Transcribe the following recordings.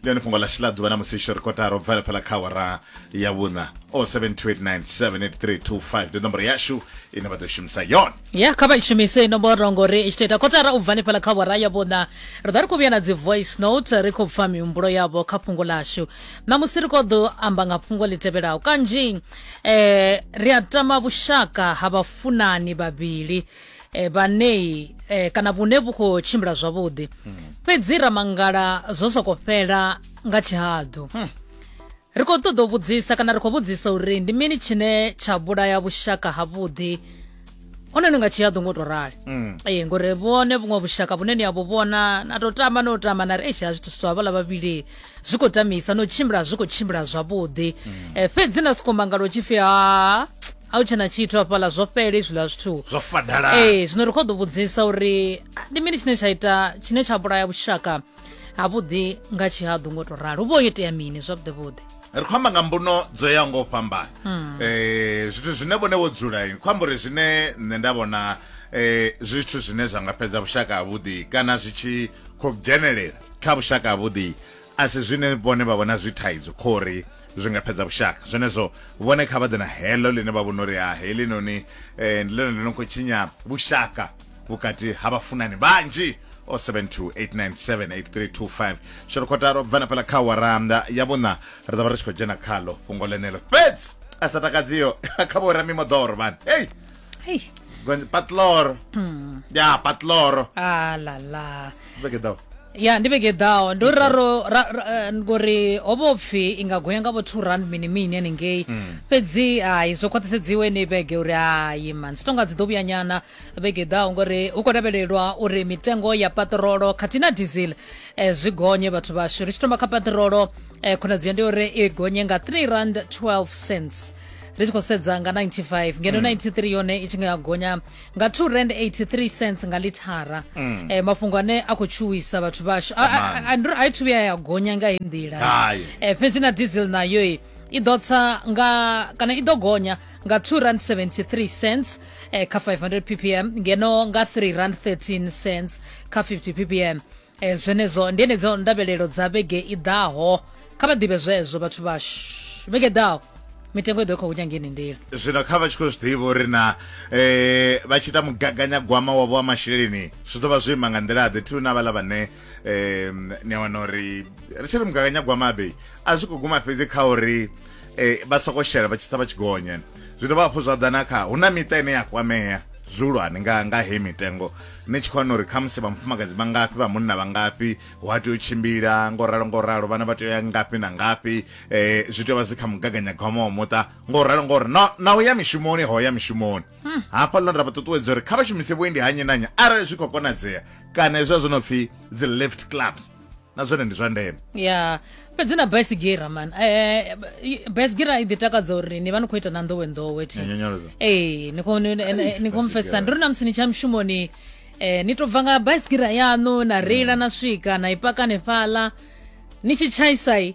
ndi one fhungo ḽashu ḽa ḓuvha na musi tsho ri kotara u bva fhala kha awara ya vhuṋa o 72897832 ndi nomboro yashu ine vha ḓo shumisa yone ya kha vha shumise nomboro ngori i tshi tou ita kotara u bva fhala kha awara ya vhuṋa ri ḓa ri khou vhuya na dzi voice note ri khou pfa mihumbulo yavho kha fhungo ḽashu ṋamusi ri khou ḓo amba nga fhungo ḽi tevhelaho kanzhi eh, ri a tama vhushaka ha vhafunani vhavhili e, eh, vhanei e, eh, kana vhune vhu khou tshimbila zwavhuḓi hmm. fhedzi ramangala zwo soko fhela nga tshihaḓu hmm. ri khou ṱoḓa u vhudzisa kana ri khou vhudzisa uri ndi mini tshine tsha vhulaya vhushaka havhuḓi hone ni nga tshihaḓu ngo to rali hmm. ee ngori vhone vhuṅwe vhushaka vhune ni abo vhona na to tamba no tamba na ri eish a zwithu swa vhala vhavhili zwi khou tamisa no tshimbila zwi khou tshimbila zwavhuḓi fhedzi na soko mangalo tshifhi ha a hu tshena tshithu hafhaḽa zwo fhela izwiḽa zwithu zwo fadala ee zwino ri khou ḓo vhudzisa uri ndi mini tshine tsha ita tshine tsha vhulaya vhushaka havhuḓi nga tshihaḓu ngo to ralo hu vho yo itea mini zwavhuḓi vhuḓi ri khou amba nga mbuno dzo ya ngo fhambana um zwithu zwine vhone vho dzula ni khou amba uri zwine nṋe nda vhona um zwithu zwine zwa nga fhedza vhushaka havhuḓi kana zwi tshi khou dzhenelela kha vhushaka havhuḓi a si zwine vhone vha vhona zwi thaidzo khori zwi nga fhedza vhushaka zwenezwo vhone kha vha ḓe na heḽo ḽine vha vhona uri ha heḽi noni um eh, ndi ḽone ḽi no khou tshinya vhushaka vhukati ha vhafunani vhanzhi o 72897832 sholokhotaro bvana pela kha waranda ya vhuna ri ḓo vha ri tshi khou dzhena khalo fhungo ḽenelo fhedzi a sa takadziyo kha vho ramimoḓoro vhani hei Hey. Gon patloro. Mm. Ya patloro. Ah la la. Beke dawo. ya ndi vhege ḓaho ndo raro ra- ra- eh, ngori ho vho pfhi i nga gonya nga vho two rand mini mini haningei Mm. fhedzi hai zwo khwaṱhisedziwe ni vhege uri hai man zwi tonga dzi ḓo vhuya nyana vhege ḓaho ngori hu khou lavhelelwa uri mitengo ya paṱirolo khathihi na diesel eh, zwi gonye vhathu vhashu ri tshi thoma kha paṱirolo eh, khonadzeo ndi uri i gonye nga 3 rand 12 cents ri tshi khou sedza nga 95 ngeno 93 mm. yone i tshi nga gonya nga 2 rand 83 cents nga lithara mm. eh, mafhungo ane a khou tshuwisa vhathu vhashu a i thu vhuya ya gonya nga heyi nḓila eh, fhedzi na diesel nayo i ḓo tsa nga kana i ḓo gonya nga 2 rand 73 cents eh, kha 500 ppm ngeno nga 3 rand 13 cents kha 50 ppm e, zwenezwo ndi enedzo ndavhelelo dza vhege i ḓaho kha vha ḓivhe zwezwo vhathu vhashu vhege ḓaho mitengo i ḓo i khou hunya ngeni nḓila zwino kha vha tshi khou zwi ḓivha uri na um vha tshi ita mugaganyagwama wavho wa masheleni zwi ḓo vha zwo ima nga nḓila ḓe thuna vhala vhane um ni a wana uri ri tshi ri mugaganyagwama abe a zwi khou guma fhedzi kha uri um vha soko shela vha tshi tsa vha tshi gonya zwi dovha hafhu zwa ḓa na kha hu na miṱa ine ya kwamea zwihulwane nga nga heyi mitengo ni tshi khou wana uri khamusi vha mufumakadzi vha ngafhi vha munna vha ngafhi hu a tea u tshimbila ngo ralo ngo ralo vhana vha tea u ya ngafhi na ngafhi eh zwi tea vha zwi kha mugaganyagwama wa muṱa ngo ralo ngo ri na na u ya mishumoni ho ya mishumoni hafha ḽo nda vha ṱuṱuwedza uri kha vha shumise vhuendi ha nnyi na nnyi arali zwi khou konadzea kana hezwa zwo no pfhi dzi lift clubs na zwone ndi zwa ndeme ya fhedzi na baisigira man eh, i- baisigira i ḓi takadza uri ni vha ni khou ita na nḓowenḓowe thi Ya nyonyoloza. ee ni khou- ni- ni- ni khou mfesisa ndi uri na musi ni tsha mushumoni eh, ni tou bva nga baisigira yaṋu na reila na swika na i paka hanefhaḽa ni tshi tshaisai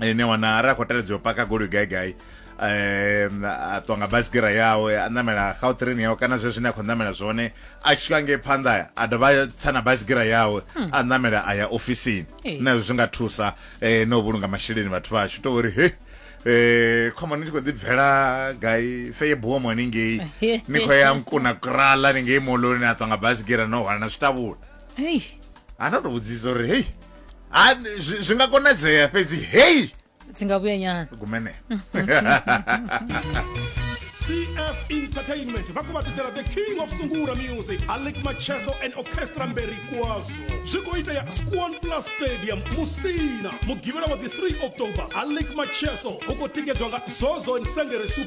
ene wana ara khou teledza u paka goloi gai gai um a ṱwa nga basikira yawe a ṋamela gautrain yawe kana zwe zwine a khou ṋamela zwone a tshi swika ngei phanḓa a dovha a tsa na basikira yawe hmm. a ṋamela a ya ofisini nazwo zwi nga thusa um na u vhulunga masheleni vhathu vhashu to uri he eh khomani tshi khou ḓi bvela gai feye buwo mone ngei ni khou ya nkuna kurala ni ngei moloni a ṱwa nga basikira no hwala na zwitabula hei ana tou vhudzisa uri hei ha zwi zwi nga konadzea fhedzi hei dzi nga vhuya nyana gumene cf entertainment va ku vatisela the king of sungura music alec macheso and orchestra mberi kwazo zwi khou itea squan plus stadium musina mugivhela wa dzi 3 october alec macheso u khou tikedzwa nga zozo nsengere super